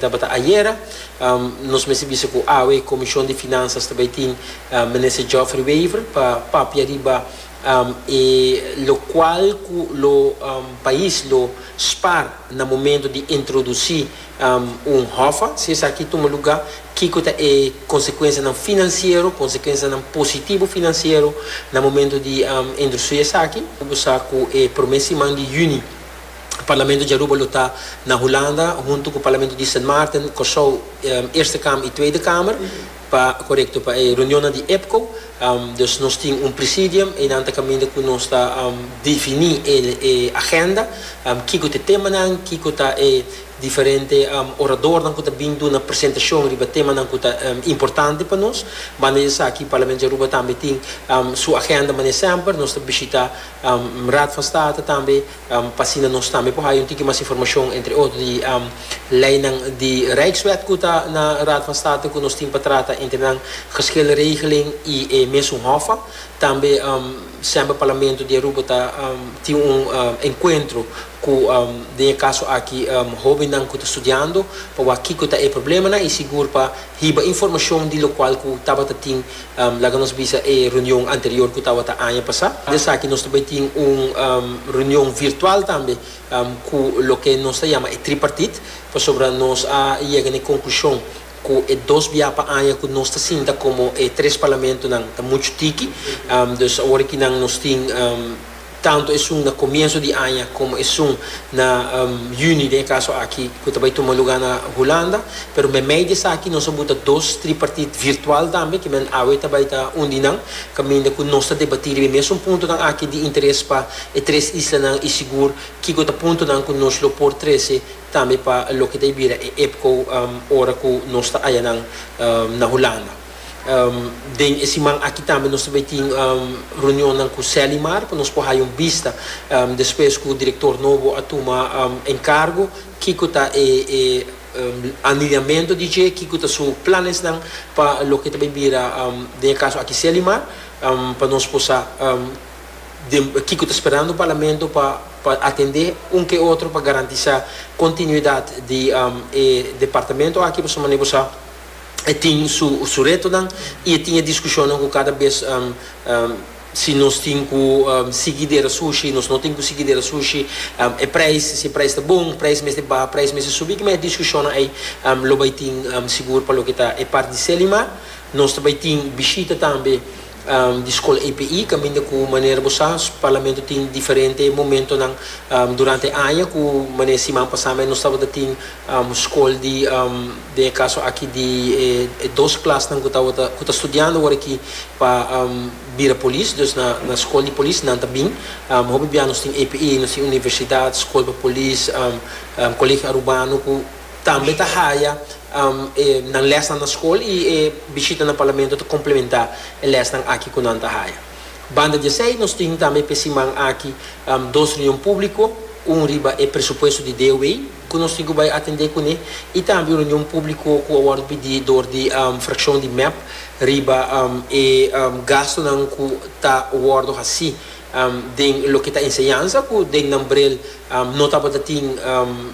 Tabata ayera, nos mester bisa ku awe Komishon di Finansas ta bai tin Minister Geoffrey Wever pa papia riba e lokual ku lo pais lo spar na momento di introdusí un hòfa. Si esaki tuma lugá, kiko ta e konsekuensianan finansiero, konsekuensianan positibu finansiero na momento di introdusi esaki? Bo sa ku e promé siman di yüni, Parlamento di Aruba lo ta na Hulanda huntu ku Parlamento di Sint Maarten, Kòrsou, Eerste Kamer i Tweede Kamer pa korekto pa e reunionnan di EPCO. Dus nos tin un presidium, einan ta kaminda ku nos ta definí e agenda, kiko ta e temanan, kiko ta e diferente oradornan ku ta bin duna presentashon riba e temanan ku ta importante pa nos. Banda di esaki Parlamento di Aruba tambe tin su agenda manera semper. Nos ta bishitá Raad van State tambe. pa asina nos tambe por haya un tiki mas informacion, entre otro di leynan di Rijkswet cu ta na Raad van State cu nos tin pa trata entre nan, Geschil Regeling y e mesun Hofa. Tambe semper Parlamento di Aruba ta tin un encuentro cu, den e caso aki, hobennan cu ta studiando pa wak kico ta e problemanan y sigur pa hiba informacion di locual cu tabata tin Laga nos bisa e reunion anterior cu tawata aña pasa. Aparte di esaki nos ta bay tin un reunion virtual tambe cu loke nos ta yama e tripartite pasobra nos a yega na e conclusion cu e dos bia pa aña cu nos ta sinta como e tres parlamentonan ta mucho tiki. Dus awor aki nan nos tin. tantu esun na komienso di aña komo esun na yüni den e kaso aki ku ta bai tuma lugá na Hulanda, pero meimei di esaki nos a buta dos tripartit virtual tambe ku men awe ta bai ta un di nan kaminda ku nos ta debatí riba e mesun puntonan aki di interes pa e tres islanan i sigur kiko ta puntonan ku nos lo por trese tambe pa loke ta bira e EPCO ora ku nos ta haya nan na Hulanda. Den e siman aki tambe nos ta bay tin reunionnan cu Selimar pa nos por haya un bista despues cu director nobo a tuma encargo kico ta e aniliamento di dje, kico ta su planesnan pa loke ta bay bira den e caso aki Selimar pa nos por sa den kico ta sperando Parlamento pa pa atende un ke otro pa garantisa continuidad di e departamento aki pasobra manera bo sa. e tin su retonan y e tin e discusionnan cu cada bes si nos tin cu sigui dera sushi, nos no tin cu sigui dera sushi, e prijs, si e prijs ta bon, prijs mester baha, prijs mester subi, kiman e discusionnan ey lo bay tin sigur pa loke ta e part di Selimar. Nos ta bay tin bishita tambe di Skol API, kaminda ku manera bo sa, Parlamento tin diferente momentonan durante e aña, ku mane siman pasá mes nos tabata tin skol di, den e kaso aki di e dos klasnan ku tabata ku ta studiando wor aki pa bira polis, dus na na skol di polis nan ta bin, hopi biaha nos tin API, nos tin universidat, skol pa polis, kolegio arubano ku. Tambe ta haya e nan lesnan na skol i e bishita na Parlamento ta komplementá e lesnan aki ku nan ta haya. Banda di esei nos tin tambe p'e siman aki dos reunion públiko, un riba e presupuesto di DOW ku nos tin ku bai atendé kuné i tambe un reunion públiko ku a wòrdu pidi dor di frakshon di mep riba e gastunan ku ta wòrdu hasí den loke ta enseñansa ku den nan brel no tabata tin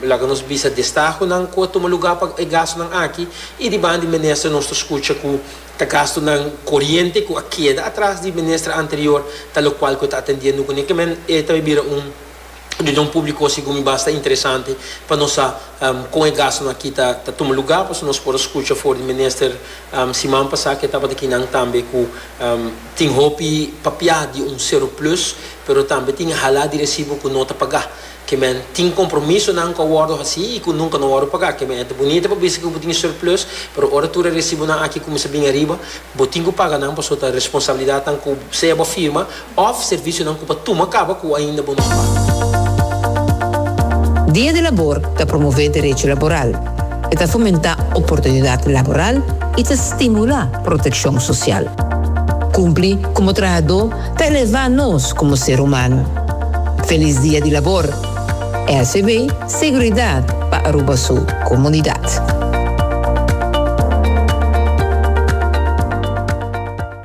laga nos bisa destahonan ku a tuma lugá pa e gastunan aki i di banda di minister nos ta skucha ku ta gastunan koriente ku a keda atras di minister anterior ta lokual ku e ta atendiendo kuné kimen e ta bira un Reunion públiko segun mi basta interesante pa nos sa kon e gastunan aki ta tuma lugá, pasobra nos por a skucha for di minister siman pasá ke tabata kinan tambe ku tin hopi papiá di un seroplus, pero tambe tin halá di resibo ku no ta pagá. Kimen tin kompromisonan ku a wòrdu hasí i ku nunka no a wòrdu pagá. Kimen e ta bunita pa bisa ku bo tin seroplus, pero ora tur e resibonan aki kuminsá bini ariba, bo tin ku paga nan pasobra ta responsabilidatnan ku sea bo firma, Òf servisionan ku pa tuma kaba ku ainda bo no pa. Dia di Labor ta promové derecho laboral, e ta fomentá oportunidat laboral i ta stimulá protekshon sosial. Kumpli komo trahadó ta elevá nos komo ser humano. Felis Dia di Labor! SEB, Seguridat pa Aruba su komunidat.